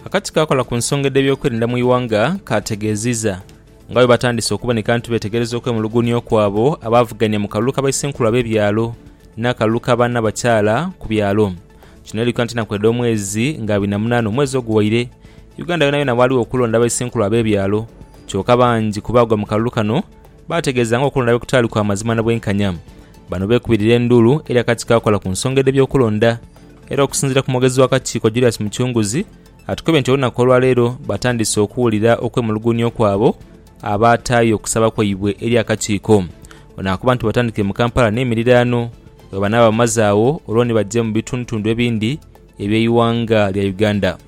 Akakiiko akola ku nsonga edh'ebyokwerinda mu ighanga kaategeezizza nga bwe batandise okuboneka nti beetegereza okwemulugunya okwabo abaavuganya mu kalulu ka baisenkulu ab'ebyalo n'akalulu ka baanabakyala ku byalo. Kino eli ku ntanaku edh'omwezi nga abiri na munaana omwezi oguwaire, Uganda yonayona waaliwo okulonda abaisenkulu ab'ebyalo kyoka bangi ku baagwa mu kalulu kano baategeeza nga okulonda bwe kutaali kwa mazima na bwenkanya. Bano beekubirira enduulu eri akakiiko akola ku nsonga edh'ebyokulonda Era okusinziira ku mwogezi w'akakiiko Julius Mucunguzi, atukebye nti olunaku olwaleero batandise okuwulira okwemulugunya okwabo abaataayo okusaba kwaibwe eri akakiiko. Ono akoba nti batandikire mu Kampala n'emiriraano bwebanaaba bamaze agho olwo ni baje mu bitundutundu ebindi eby'eighanga lya Uganda.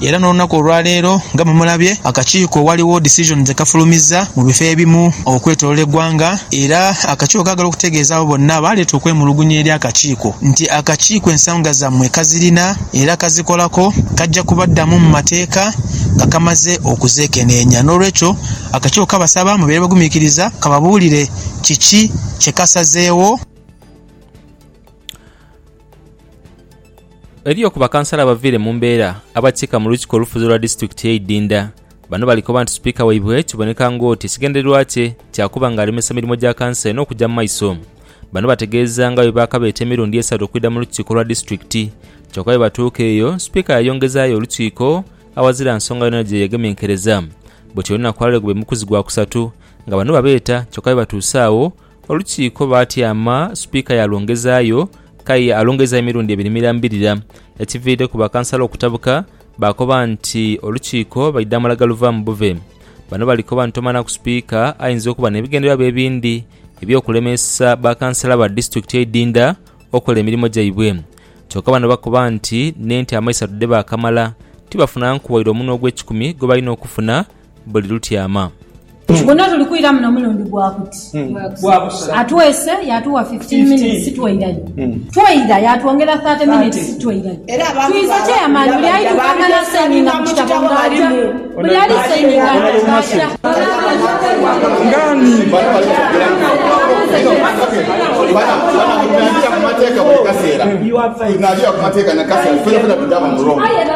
Era n'olunaku olwaleero nga bwemulabye akakiiko ghaligho decision dhekafulumizza mu bifo ebimu okwetolola eggwanga era akakiiko kaagala okutegeeza abo bonna abaaleeta okwemulugunya eri akakiiko nti akakiiko ensonga zammwe kazirina era kazikolako kajja kubaddamu mu mateeka nga kamaze okuzeekeneenya n'olwekyo akakiiko kabasaba mubeere bagumiikiriza kababuulire kiki kyekasazeewo. Eriyo ku bakansala abaviire mu mbeera abakiika mu Lukiiko olufuzi olwa disitulikiti ye Idinda. Bano bali koba nti sipiika waibwe kiboneka ng'oti ekigendererwa kye kya kuba nga alemesa mirimo gya kanso eno okugya mu maiso. Bano bategeeza nga bwe baakabeeta emirundi esatu okwidha mu lukiiko lwa disitulikiti kyoka bwe batuuka eyo sipiika yayongezaayo olukiiko awazira nsonga yonayona gye yegemenkereza. Bwetyo olunaku lwaleero gube mukuzi gwa kusatu nga bano babeeta kyoka bwe batuuse agho Olukiiko baatyama, Sipiika yaalwongezaayo, k'aye alwongeza emirundi ebiri mirambirira. Ekiviireku bakansala okutabuka, baakoba nti Olukiiko baidhaamula galuvaamu bube. Bano bali koba nti tomanaku Sipiika ayinza okuba n'ebigendererwa bye ebindi eby'okulemeesa bakansala ba disitulikiti eidhindha okola emirimo gyaibwe. Kyoka bano bakoba nti n'ente amaisatu dhebakamala, tibafunanku waire omunwe ogw'ekikumi gwebalina okufuna, buli lutyama. Guno tuli kwira muno mulundi gwa kuti. Atwese yaatuwa fifteen minutes tweirayo. Tweira yaatwongera thirty minutes tweirayo. Twiza chairman buli aidhuka nga nasayininga mu kitabo nga aja, buli ali sayininga nga aja. Aye era.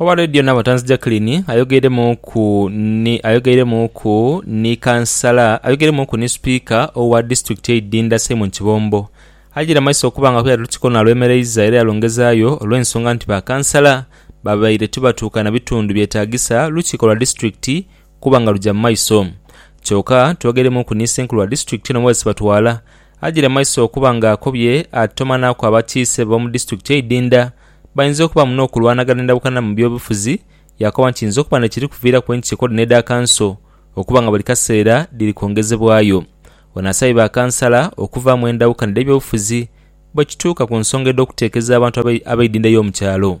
Owa Radio Nabatanzi Jacqueline ayogeiremuuku ni ayogeiremuuku ni kansala ayogeiremuuku ni sipiika owa disitulikiti eye Idinda Simon Kibombo ajaire amaiso okuba nga kuyali olutiko nalwemereiza era yalongezaayo olwensonga nti ba kansala babaire tibatuuka na bitundu byetagisa lukiko lwa disitulikiti kuba nga luja mu maiso kyoka twogeiremuuku ni senkulu wa disitulikiti eno Moses Batwala Agiire mu maiso okuba nga akobye ati tomanaaku abakiise b'omu disiturikiti eidhindha bayinza okubaamu n'okulwanagana endabukana mu by'obufuzi yaakoba nti kiyinza okuba n'ekiri kuviiraku enkiiko dhino edha kanso okuba nga buli kaseera dhiri kwongezebwayo. Ono asabye bakansala okuvaamu endawukana edh'ebyobufuzi bwekituuka ku nsonga edh'okuteekeza abantu ab'eidhindha ey'omu kyalo.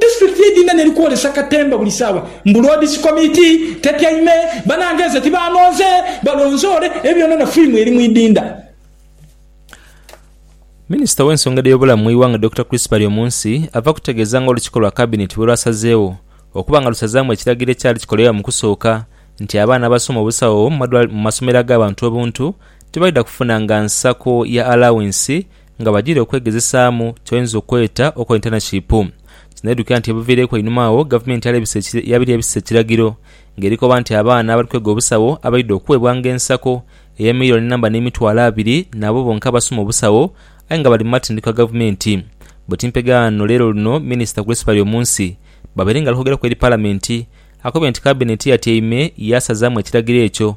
District ye Dinana eri kwolesa katemba buli saawa mbu Lord's Committee tetyaime, banange nze tibanonze balonzoole ebyonona firimu eri mu idinda. Minisita w'ensonga edh'ebyobulamu mu ighanga Dokita Chris Baryomunsi ava kutegeeza nga olukiiko lwa kabineti bwerwasazeewo okuba nga lusazaamu ekiragiro ekyali kikolebwa mu kusooka nti abaana abasoma obusawo mu masomero ag'abantu obuntu tibaidha kufunanga nsako ya alawinsi nga bajiire okwegezesaamu kyoyinza okweta okola intaneshipu. Kinaidhukira nti ebuviireku einhuma agho gavumenti yabire ebisa ekiragiro nga eri koba nti abaana abali kwega obusawo abaidha okuweebwanga ensako eya milioni namba n'emitwalo abiri naabo bonka abasoma obusawo aye nga bali mu matendhekwa gavumenti bwe timpegaano leero luno minisita Grace Baryomunsi babaire nga ali kwogeraku eri palamenti akobye nti kabineti yatyaime yaasazaamu ekiragiro ekyo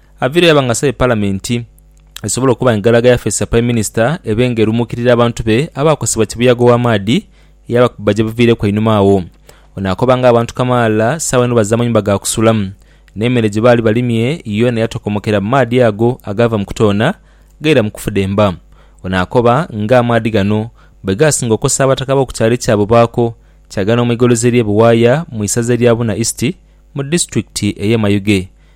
Aviile yaba nga asabye Palamenti esobole okuba nga egalaga yafeesi ya Prime Minister ebe nga erumuukirira abantu be abaakosebwa kibuyaga ow'amaadhi eyaba kubba gye buviireku einhuma agho. Ono akoba nga abantu kamaala sawa inho baze amayumba ga kusulamu, n'emere gye baali balimye yoona yatokomokera mu maadhi ago agaava mu kutoona gaira mu kufudemba. Ono akoba nga amaadhi gano bwe gaasinga okosa abataka b'oku kyalo ekyabo baako kyaga n'omwigolozi eri e Buwaaya mu isaza erya Buna East mu disitulikiti ey'e Mayuge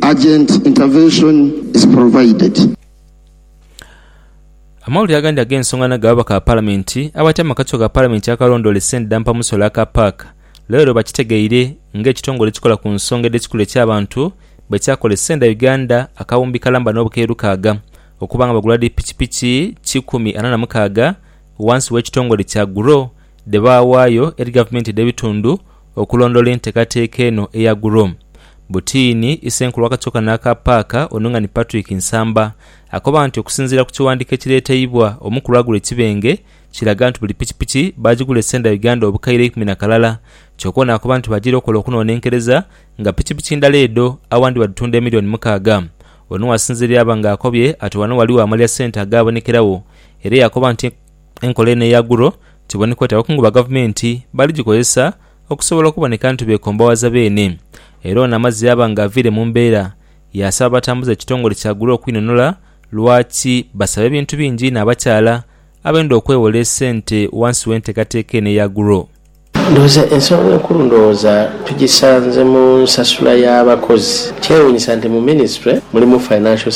Urgent intervention is provided. Amawulire agandi ag'ensonga nago ababaka ba Palamenti abatyaime mu kakiiko ka Palamenti akalondoola esente dha mpamusolo aka paaka leero bakitegeire nga ekitongole ekikola ku nsonga edh'ekikula eky'abantu bwekyakola esente dha Uganda akawumbi kalamba n'obukaire lukaaga okuba nga bagula dhi pikipiki kikumi ana na mukaaga wansi w'ekitongole kya Grow dhebaawaayo eri gavumenti edh'ebitundu okulondoola enteekateeka eno eya GROW. Butiini, Isenkulu w'akakyoka n'aka paaka, Onung'ani Patrick Nsamba, akoba nti okusinziira ku kiwandiiko ekireeteibwa omu ku lwagula ekibenge, kiraga nti buli pikipiki baagigula esenda Uganda obukaire eikumi na kalala kyoka ono akoba nti bajiire okukola okunoonenkereza nga pikipiki ndala edho awandi badhitunda emillioni mukaaga Ono wasinziira yaba nga akobye ati wano waliwo amalya sente agaabonekeragho era yakoba nti Enkola eno eya Guro kiboneka oti abakungu ba gavumenti bali gikozesa okusobola okuboneka nti beekombawaza beene. Era ono amazze yaaba nga aviire mu mbeera, yaasaba abatambuza ekitongole kya Guro okwinunula lwaki basaba ebintu bingi inho abakyala abenda okwewola esente wansi w'enteekateeka eno eya Guro. Ndowooza ensonga enkulu ndowooza tugisanze mu nsasula y'abakozi. Kyewuunyisa nti mu minisitule mulimu Financial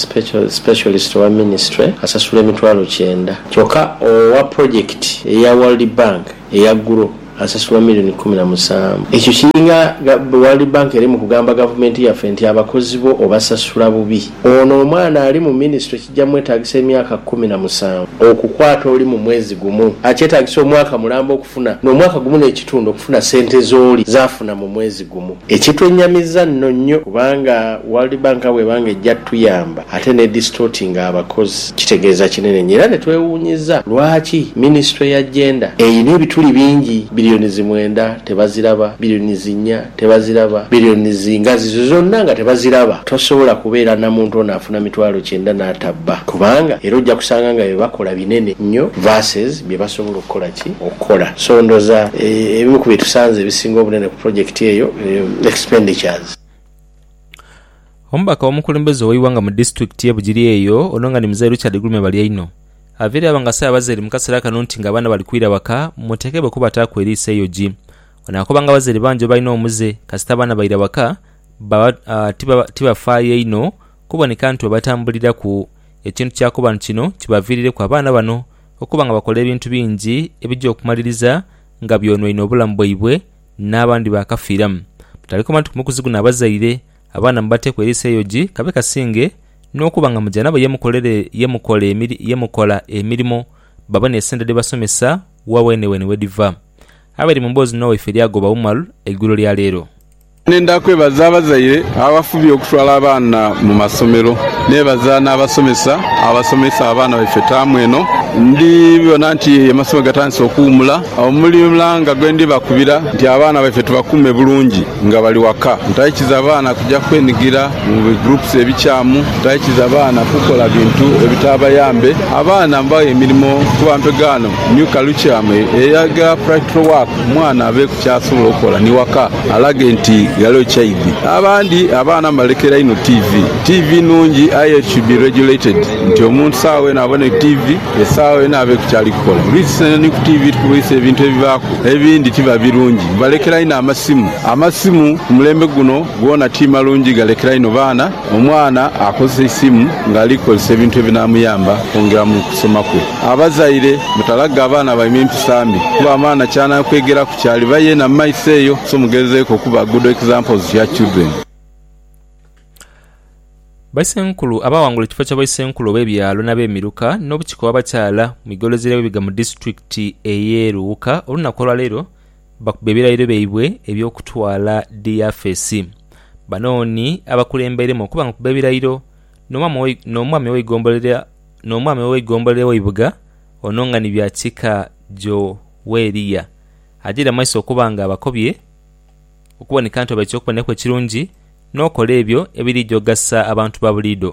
Specialist owa minisitule asasulwa emitwalo kyenda, kyokka owa pulojekiti eya World Bank eya Grow asasulwa million kkumi na musanvu. Ekyo kiringa World Bank eri mu kugamba gavumenti yaffe nti abakozi bo obasasula bubi. Ono omwana ali mu minisitule. Kija mwetaagisa emyaka kumi na musanvu okukwata oli mu mwezi gumu. Akyetaagisa omwaka mulamba okufuna, n'omwaka gumu n'ekitundu okufuna sente z'oli zaafuna mu mwezi gumu. Ekitwennyamiza nno nnyo kubanga World Bank nga bw'eba nga ejja tuyamba ate n'edistortinga abakozi kitegeeza kinene nnyo era ne twewuunyiza lwaki minisitule ya Gender erina ebituli bingi, billions mwenda tebaziraba, billions nnya Tebaziraba. Billions nga zizo zonna nga tebaziraba. Tosobola kubeera na muntu ono afuna mitwalo kyenda n'atabba kubanga era ojja kusanga nga bye bakola binene nnyo verses bye basobola okukola ki? Okukola. So ndooza ebimu ku bye tusanze ebisinga obunene ku pulojekiti eyo expenditures. Omubaka w'omukulembeze ow'eighanga mu disitulikiti ye Bugiri eyo ono nga ni Mzee Richard Gulume Balyaino aveire aba nga asabe abazaire mu kaseera kano nti nga abaana bali kwira waka muteekebwe kubataaku eriiso eyogi Onaakobanga abazaire bangi abalina omuze kasita abaana baira waka baba uh, tibafaayo tiba inho kuboneka nti babatambuliraku. Ekintu kyakoba nti kino kibaviirireku abaana bano okuba nga bakola ebintu bingi ebija okumaliriza nga byonwaine obulamu bwaibwe n'abandi baakafiiramu. Butalikoma nti kumukuzi guno abazaire abaana mubateeku eriiso eyogi kabe kasinge n'okuba nga muja nabo ye mukola emirimo babone esente dhebasomesa wa weneweene wedhiva. Abali mu mboozi n'owaife lyagoba Umar eigulo lya leero. Nenda kwebaza abazaire abafubye okutwala abaana mu masomero. Nebaza n'abasomesa abasomesa abaana baife taamu eno. Ndi bona nti amasomero gatandise okuwumula. Omulanga gwe ndi bakubira nti abaana baife tubakuume bulungi. Nga bali waka, mutaikiza baana kuja kwenigira mu bi groups ebikyamu. Mutaikiza baana kukola bintu ebitaabayambe. Abaana mubaghe emirimo kuba mpegaano new callucium eyagala practical work omwana abeeku kyasobola okukola ni waka alage nti ghaligho kyaidhi. Abandi abaana mubalekera inho TV. TV nungi aye it should be regulated nti omuntu sawa weena abone TV. Esaagho yona abe ku kyali kukola. Lwisi ni ku tiivi tukulwisa ebintu ebibaaku ebindi tibiba birungi. Mubalekera inho amasimu. Amasimu ku mulembe guno goona ti malungi, galekera inho baana. Omwana akozesa eisimu ng'ali kukozesa ebintu ebinaamuyamba okwongera mu kusoma kwe. Abazaire mutalage abaana baimwe empisa mbi kuba amaana ky'anaakwegeraku ky'aliba yeena mu maiso eyo, so mugezeeku okuba good examples to your children. Baisenkulu abaawangula ekifo kya Baisenkulu ob'ebyalo n'abemiruka n'obukiiko obw'abakyala mu igolozi ly'abebiga mu disitulikiti ey'e Luwuka olunaku olwaleero bakubye ebirayiro byaibwe eby'okutwala diyafesi. Bano ni abakulembeiremu okuba nga kubba ebirayiro n'omwami ow'eigombolola eweibuga ono nga ni Byakika Joweria ajaire mu maiso okuba nga abakobye. okuboneka nti oba eky'okubonaku ekirungi n'okola ebyo ebiriidha okugasa abantu ba buliidho.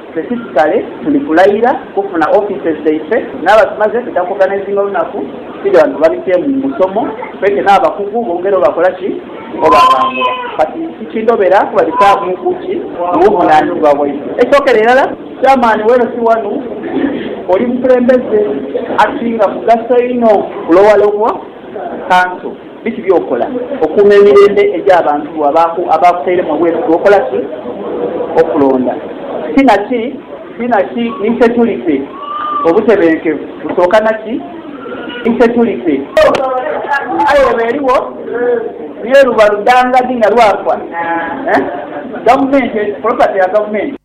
Ffe fisikale tuli kulayira kufuna offices dhaife naba tumaze tuja ku organizinga olunaku tuja wano babitemu musomo twete nabakugu bongere obakola ki obabangula kati tikindobera kuba bisamu ku ki mubuvunanizibwa bwaife ekyokera erala chairman weno si wanu oli mukulembeze asinga mugaso inho ku lower level council. Biki by'okola okuuma emirembe egy'abantu bo abaakutairemu obwesigwa? Okola ki okulonda ki na ki ki na ki ni securite? Obutebenkevu busooka na ki? Ni securite. Aye eba eriwo ni eruba ludangadi nga lwafa, eh? Gavumenti, property ya gavumenti.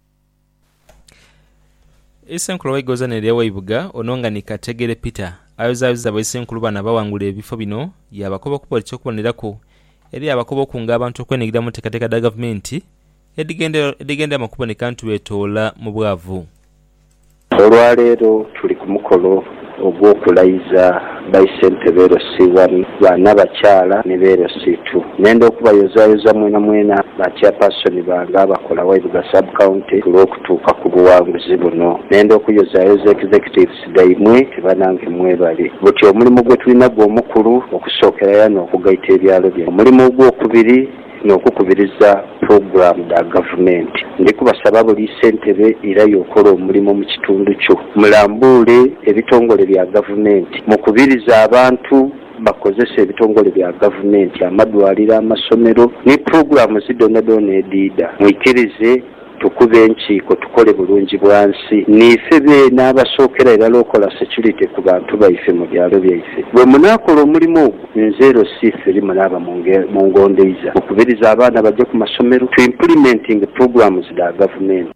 Eisenkulu Waigoza n'erya Ewaibuga ono nga ni Kategere Peter ayozayoza baisenkulu bano abawangula ebifo bino yaabakoba okuba oti ky'okuboneraku eri abakoba okunga abantu okwenhigirira mu nteekateeka dha gavumenti edhigendera edhigenderamu okuboneka nti beetoola mu bwavu. Olwaleero tuli ku mukolo ogw'okulayiza baisentebe LC wani, baana, bakyala ni be LC tu. Nenda okubayozayoza mwenamwena ba Chairperson bange abakola Waibuga Sub County ku lw'okutuuka ku buwanguzi buno. Nenda okuyozayoza Executives dhaimwe nti banange mwebale. Buti omulimu gwetulina gw'omukulu okusookera yano okugaita ebyalo bino. Omulimu ogw'okubiri n'okukubiriza pulogulaamu dha gavumenti. Ndi kubasaba buli ssentebe eirayo okola omulimo mu kitundu kyo mulambuule ebitongole bya gavumenti, mukubirize abantu bakozese ebitongole bya gavumenti, amadwaliro, amasomero ni pulogulaamu zidhonadhona edhiidha. Mwikirize. Tukube enkiiko tukole bulungi bwa nsi. Niife beene abasookera irala okola securite ku bantu baife mu byalo byaife. Bwe munaakola omulimo ogwo, nze Rosiitheri munaaba mungondeiza. Mukubirize abaana baje ku masomero, tu implementinge programs dha Gavumenti.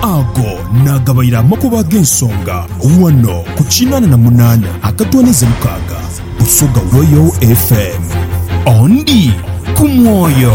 Ago naagabaire amakubo ag'ensonga ghano ku kinaana na munaana akatwaniza mukaaga Busoga Royal FM. Ondi ku mwoyo.